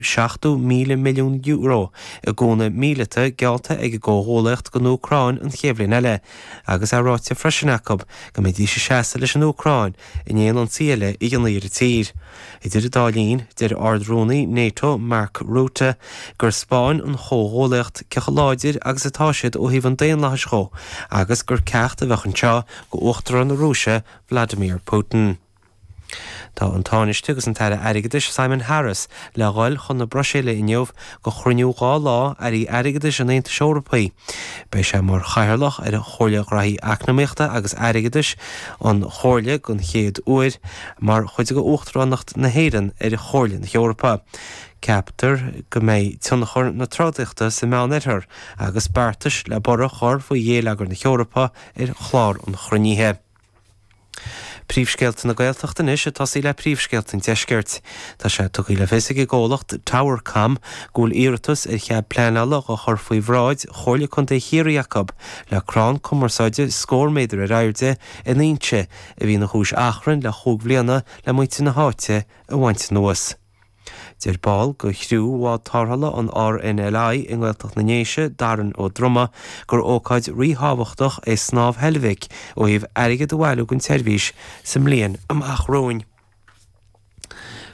€70,000 milliún i gúnamh míleata geallta ag an gcomhghuallaíocht don Úcráin an chéad bhliain eile agus é ráite freisin acu go mbeidís ag seasamh leis an Úcráin in aon ionsaí eile a dhéanfaí ar an tír. Idir an dá linn, deir Ard-Rúnaí Nato Mark Rutte gur 'speáin an chomhghuallaíocht cé chomh láidir agus atá siad ó thaobh an daonlathais dhó agus gur ceacht a bheadh anseo d'Uachtarán na Rúise Vladimir Putin. Tá an Tánaiste agus an tAire Airgeadais Simon Harris le dhul chun na Bruiséile inniu do chruinniú dhá lá Airí Airgeadais an Aontais Eorpaigh. Beidh sé mar chathaoirleach ar Chomhairle Ghraithí Eacnamaíochta agus Airgeadais an Chomhairle don chéad uair mar chuid de Uachtaránacht na hÉireann ar Chomhairle na hEorpa. Ceaptar go mbeidh tionchar na trodaíochta sa Meánoirthear agus beartais le borradh a chur faoi ghéilleagar na hEorpa ar chlár an chruinnithe. Príomhscéalta na Gaeltachta anois ag tosaí le príomhscéalta an deiscirt. Tá sé tugtha le fios ag an gcomhlacht Towercom go bhfuil iarratas ar chead pleanála á chur faoi bhráid Chomhairle Contae Chiarraí acu le crann cumarsáide scór méadar ar airde in Inse a bhí ina chúis achrainn le chúig bhliana le muintir na háite a bhaint anuas. Deir ball de chriú Bhád Tarrthála an RNLI i nGaeltacht na nDéise, Darren Ó Droma, gur ócáid ríthábhachtach é Snámh Heilbhic ó thaobh airgead a bhailiú don tseirbhís sa mbliain amach romhainn.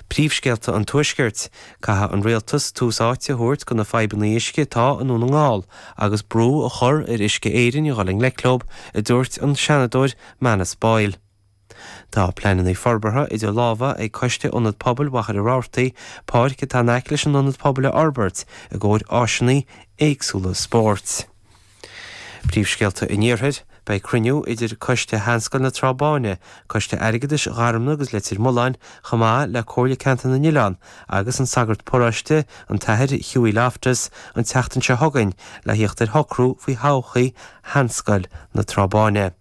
Príomhscéalta an Tuaiscirt, Caithfidh an Rialtas tús áite a thabhairt do na fadhbanna uisce atá i nDún na nGall agus brú a chur ar Uisce Éireann a dhul i ngleic leo, a dúirt an Seanadóir Manus Boyle. Tá pleananna forbartha idir lámha ag Coiste Ionad Pobail Mhachaire Rabhartaigh páirc atá in aice leis an Ionad Pobail a fhorbairt i gcomhair áiseanna éagsúla spóirt. Príomhscéalta an Iarthair, Beidh cruinniú idir Coiste Sheanscoil na Trá Báine, Coiste Airgeadais Gharmna agus Leitir Mealláin, chomh maith le Comhairle Ceantar na nOileán agus an Sagart Paróiste, an tAthair Hughie Loftus, an tseachtain seo chugainn le theacht ar shocrú faoi thodhchaí Sheanscoil na Trá Báine.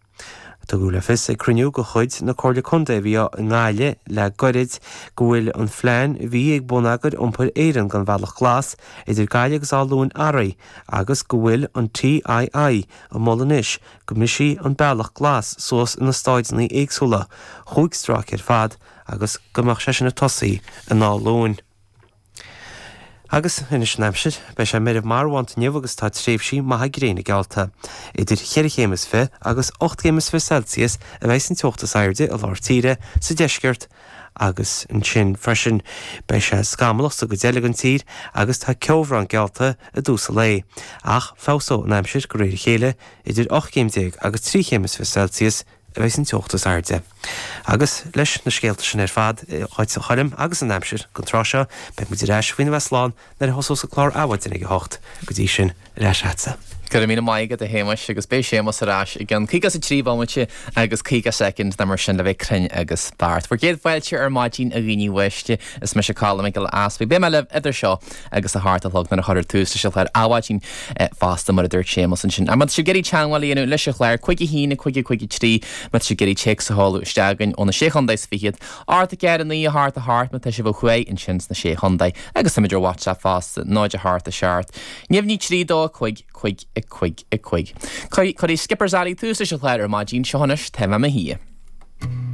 Tugadh le fios ag cruinniú de chuid na Comhairle Contae a bhí i nGaillimh le goirid go bhfuil an phlean a bhí ag Bonneagar Iompair Éireann don Bhealach Glas idir Gaillimh agus Áth Luain athraithe agus go bhfuil an TII ag moladh anois go mbrisfí an Bealach Glas suas ina stáideanna éagsúla chúig stráice ar fad agus go mbeadh sé sin ag tosaí in Áth Luain. Agus anois an aimsir. Beidh sé meirbh marbhánta inniu agus tá tréimhsí maithe gréine geallta. Idir cheithre chéim is fiche agus ocht gcéim is fiche Celsius a bheas an teocht is airde i lár tíre, sa deisceart agus ansin freisin beidh sé scamallach sa gcuid eile den tír agus tá ceobhrán geallta i dtús an lae. Ach feabhsóidh an aimsir de réir a chéile, idir ocht gcéim déag agus trí chéim is fiche Celsius, a bheas an teocht is airde. Agus, leis na scéalta sin ar fad agat, a Choilm, agus an aimsir go tráth seo, beidh muid ar ais faoina bheith slán nuair a thosós an clár Adhmhaidin ag a hocht. Go dtí sin, ar ais leatsa. Go raibh míle maith agat, a Shéamais, agus beidh Séamas ar ais i gceann caoga is a trí bhomaite agus caoga soicind nó mar sin le bheith cruinn agus beacht. Bhur gcéad fáilte ar maidin, a dhaoine uaisle. Is mise Colm Mac Giolla Easpaig. Beidh mé libh idir seo agus a hocht a chlog nuair a chuirfear tús leis an chlár Adhmhaidin fosta, mar a dúirt Séamas ansin. Má tá sibh ag iarraidh teagmháil a dhéanamh leis an chlár, cúig a haon, cúig a cúig a trí, má tá sibh ag iarraidh téacs a sheoladh isteach againn ó na Sé Chontae is Fichead, ocht a náid a naoi a hocht a hocht má tá sibh ó thuaidh ansin sna Sé Chontae agus táimid ar WhatsApp fosta, náid a hocht a seacht, naoi naoi trí dó a cúig, cúig, a cúig, a cúig. Cuirfidh Skipper's Alley tús leis an chlár ar maidin, seo anois, Tá Mé 'Mo Shuí.